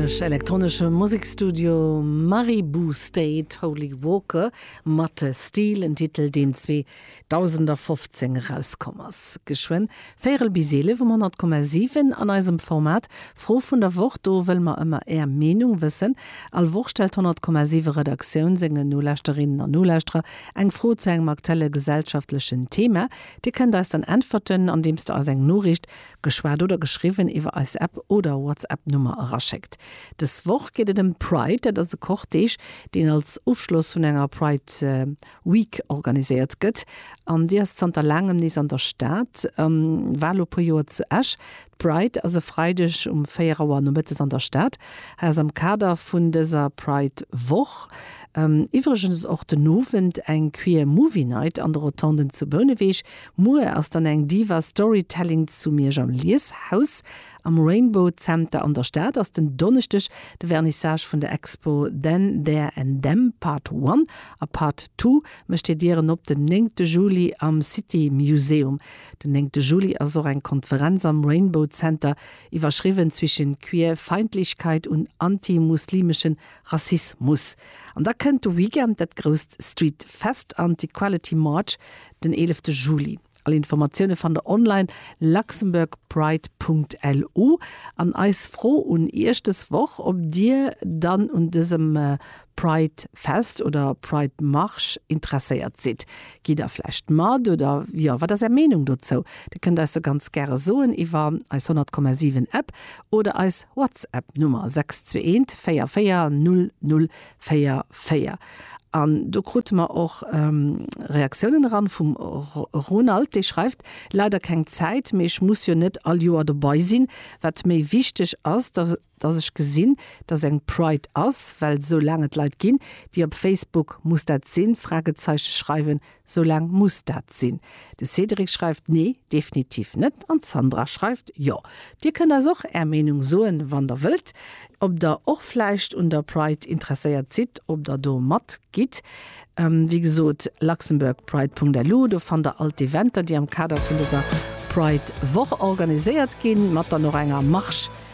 Englesch, elektronesche Musekstudio Maribou State, Holy Walker mat Steel, en Titel deen 2015 erauskomm ass. Geschwënn véierel bis eelef um 100,7 an eisem Format Fro vun der Woch, do wëlle mer ëmmer är Meenung wëssen. All Woch stellt d'100,7 Redaktioun sengen Nolauschterinnen an Nolauschterer eng Fro zu engem aktuelle gesellschaftlechen Thema. Dir kënnt eis dann äntwerten andeems der eis eng Noriicht Geschwat oder geschriwwen iwwer eis App oder WhatsApp Nummer eraschéckt. Des Woch geet et ëm d'Pride. Dat ass e Cortège, deen als Ofschloss vun enger Pride Week organiséiert gëtt. An déi ass zanter laangem nees an der Stad. War elo e puer Joer zu Esch. D'Pride ass e Freideg um 4 Auer nomëttes an der Stad. Hei ass am Kader vun dëser Pride Woch iwwregens och den Owend eng Queer Movie Night an de Rotonden zu Bouneweg, Muer ass dann eng Diva Storytelling zu Miersch am Lieshaus. Am Rainbow Zenter an der Stad ass den Donneschdeg de Vernissage vun der Expo Then, There and Them, Part One a Part Two mécht hir Dieren op den néngte Juli am City Museum. Den néngte Juli ass och eng Konferenz am Rainbow Zenter iwwerschriwwen Zwischen Queerfeindlichkeit und antimuslimischen Rassismus. An da kënnt de Weekend dat grousst Street Fest an d'Equality March den 11 Juli. All Informatioune fannt der online, luxembourgpride.lu. An eis Fro un iech dës Woch, ob dir dann un dësem Pride Fest oder Pride Marche interesséiert sidd. Gitt der vläicht mat? Oder jo, wat ass är Meenung dozou? Dir kënnt eis se ganz gäre soen iwwer eis 100,7 App oder eis WhatsApp Nummer 62144000. 4, 4. An do krute mer och Reaktiounen eran vum Ronald, dee schreift, Leider keng Zäit, mee ech muss jo net all Joer dobai sinn. Wat méi wichteg ass, dass ech gesinn, dass eng Pride ass, well soulaang et Leit ginn, déi op Facebook, muss dat sinn? Fragezeichen schreiwen, Sou laang muss dat sinn. De Cédric schreift, Nee, definitiv net. An d'Sandra schreift, Jo. Dir kënnt eis och Är Meenung soen, wann Der wëllt, ob Der och vläicht un der Pride interesséiert sidd, ob Der do mat gitt. Wéi gesot, luxembourgpride.lu, do fannt Der all d'Eventer, déi am Kader vun dëser Pride-Woch organiséiert ginn, mat dann och enger Marche